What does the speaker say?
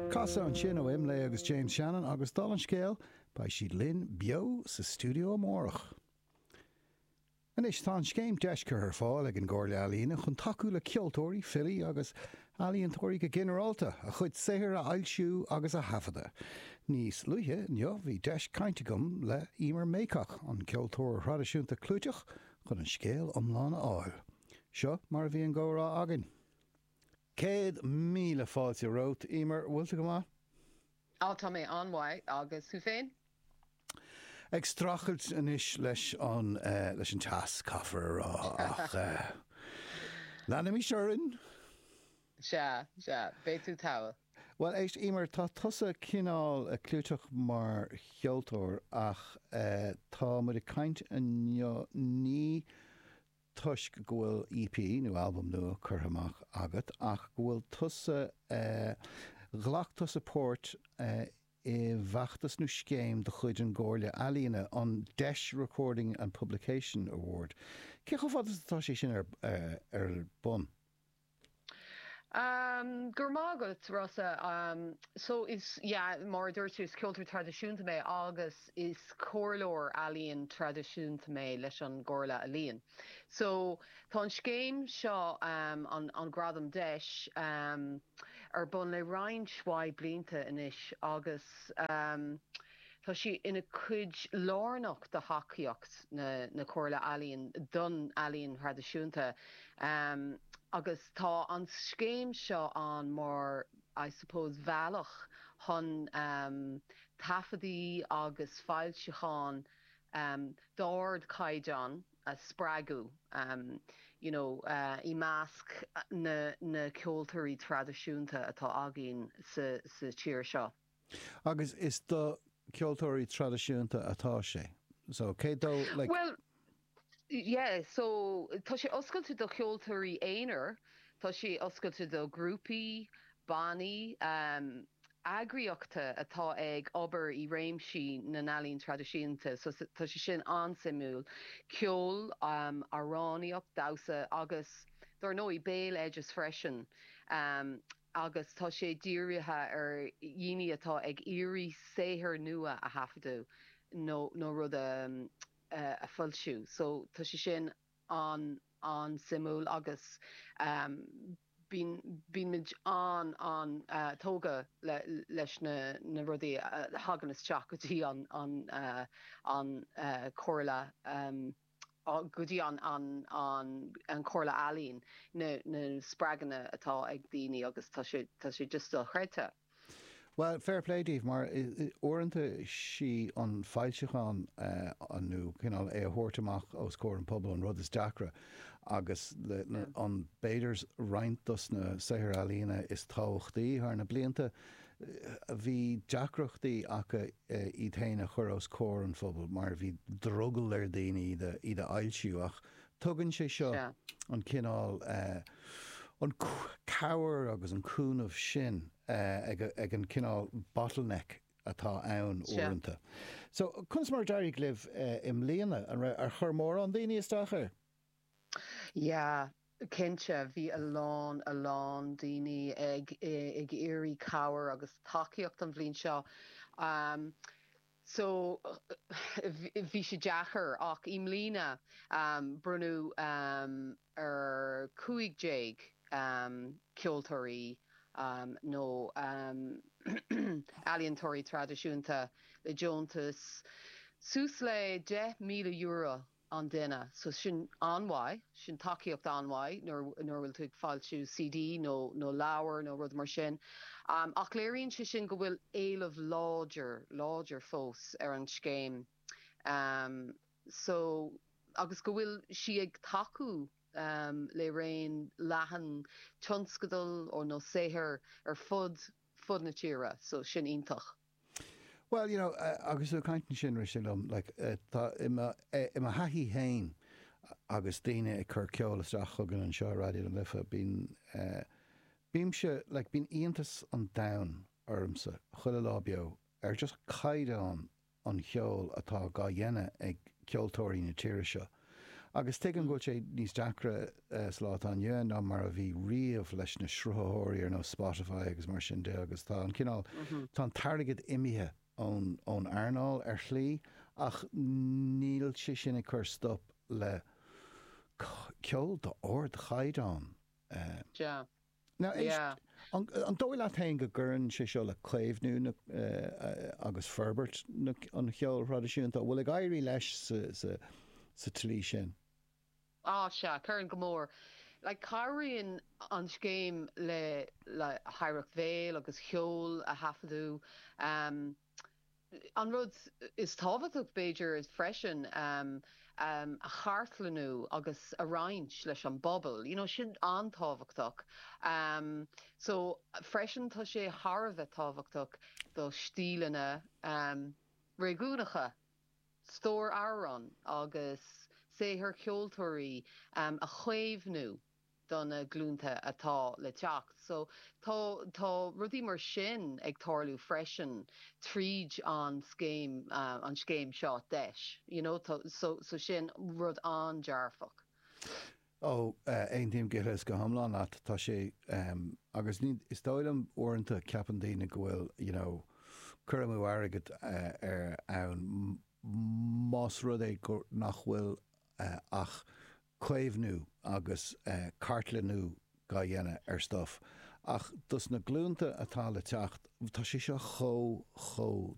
Casadh ansin ó IMLÉ agus James Shannon agus dála an scéil beidh siad linn beo sa stiúideo amárach. Anois tá an scéim Deis curtha ar fáil ag an gComhairle Ealaíne chun tacú le ceoltóirí, filí agus ealaíontóirí go ginearálta, a chuid saothair a fhoilsiú agus a thaifeadadh. Níos luaithe inniu bhí deis cainte agam le Emer Mayock, an ceoltóir traidisiúnta clúiteach chun an scéal iomlán a fháil. Seo mar a bhí an gcomhrá againn. Céad míle fáilte romhat, Emer. Bhfuil tú go maith? Á, tá mé an-mhaith. Agus thú féin? Ag streachailt anois leis an, eh, leis an teas, caithfear a rá, ach eh, leanaimis orainn. Sea, sea. Beidh tú togha. Bhuel, éist, Emer, tá tusa cineál clúiteach mar cheoltóir ach eh, tá muid ag caint inniu, ní, toisc go bhfuil EP nó albam nua curtha amach agat ach go bhfuil tusa ghlac tusa páirt i bhfeachtas nó scéim de chuid an gComhairle Ealaíon, an Deis Recording and Publication Award. Cé chomh fada is atá sé sin ar bun? Go raibh maith agat, Rossa. So is, yeah, mar a dúirt tú, is ceoltóir traidisiúnta mé agus is comhairleoir ealaíon traidisiúnta mé leis an gComhairle Ealaíon. So tá an scéim seo, an Gradam Deis, ar bun le roinnt mhaith blianta anois agus, Tá sí ina cuid lárnach de thacaíocht na Comhairle Ealaíon don ealaín thraidisiúnta agus tá an scéim seo ann mar I suppose bhealach chun taifeadaí agus foilseacháin d'ardchaighdeán a spreagadh you know i measc na ceoltóirí traidisiúnta atá againn sa tír seo. Agus is do ceoltóirí traidisiúnta atá sé. So, cé dó, like. Bhuel, yeah, so, tá sé oscailte do cheoltóirí aonair, tá sé oscailte do ghrúpaí, bannaí, eagraíochta atá ag obair i réimsí na n-ealaíon traidisiúnta, so, tá sé sin an-suimiúil, ceol, amhránaíocht, damhsa agus, dar ndóigh, béaloideas freisin. agus tá sé dírithe ar dhaoine atá ag iarraidh saothar nua a thaifeadadh nó nó rud a a foilsiú so tá sé sin an an-suimiúil agus bíonn bíonn muid an an tógtha le leis na na rudaí a thagann isteach go dtí an an an chomhairle. go dtí an an an Chomhairle Ealaíon, na spreaganna atá ag daoine agus tá sé tá sé just dochreidte. Bhuel, fair play daoibh mar uaireanta is í an foilseachán nó cineál é a thabhairt amach os comhair an pobal an rud is deacra agus an b'fhéidir roinnt dos na saothair ealaíona is tábhachtaí thar na blianta bhí deacrachtaí acu iad féin a chur os comhair an phobail mar bhí drogall ar dhaoine iad a fhoilsiú ach tugann sé seo an cineál cabhair agus an cúnamh sin ag an cineál bottleneck atá ann uaireanta. So, conas mar a d'éirigh libh i mbliana? Ar chuir mórán daoine isteach air? Yeah, cinnte, bhí a lán, a lán daoine ag, ag iarraidh cabhair agus tacaíocht an bhliain seo. Um, so, bhí sé deacair, ach i mbliana, um, bronnadh um, ar 15 um, ceoltóirí um, nó um, ealaíontóirí traidisiúnta le deontas suas le €10,000. an duine. So sin an-mhaith, sin tacaíocht an-mhaith nuair a bhfuil tú ag foilsiú CD nó leabhar nó rud mar sin. Ach léiríonn sé sin go bhfuil éileamh láidir, láidir fós ar an scéim. So agus go bhfuil sí ag tacú le raon leathan tionscadal or nó saothair ar fud, fud na tíre. So sin iontach. Bhuel, you know, agus tú ag caint ansin, rith sé liom, like, tá, i mo thaithí fhéin, agus daoine ag cur ceol isteach chugainn anseo i Raidió na Life, bíonn, bímse, like, bíonn iontas an domhain ormsa, chuile lá beo, ar just caighdeán an cheoil atá dhá dhéanamh ag ceoltóirí na tíre seo. Agus tuigim go bhfuil sé níos deacra sa lá atá inniu ann ná mar a bhí riamh leis na sruthaitheoirí ar nós Spotify agus mar sin de agus tá an cineál, tá an t-airgead imithe ón earnáil ar shlí ach níl sé sin ag cur stop le ceol d'ard-chaighdeán. Sea, An dóigh leat féin go gcuireann sé seo le caomhnú agus forbairt an cheoil thraidisiúnta, an bhfuil ag éirí leis sa tslí sin? Á, sea, cuireann go mór. Cabhraíonn an scéim le hoidhreacht bhéil agus cheoil a thaifeadadh. An rud is tábhachtaí, b'fhéidir, freisin, a chartlannú agus a roinnt leis an bpobal, you know, sin an-tábhachtach. So, freisin, tá sé thar a bheith tábhachtach do stíleanna réigiúnacha, stór amhrán agus saothar ceoltóirí a chaomhnú. do na glúnta atá le teacht. So tá tá rudaí mar sin ag tarlú freisin tríd an scéim an scéim seo deis you know so so sin rud an-dearfach. Ó, aontaím go huile is go hiomlán leat. Tá sé em agus is dóigh liom uaireanta ceapann daoine go bhfuil you know cur amú airgid eh ar ann más rud é go nach bhfuil eh ach caomhnú agus cartlannú dhá dhéanamh ar stuff ach dos na glúnta atá le teacht tá sé seo chomh, chomh.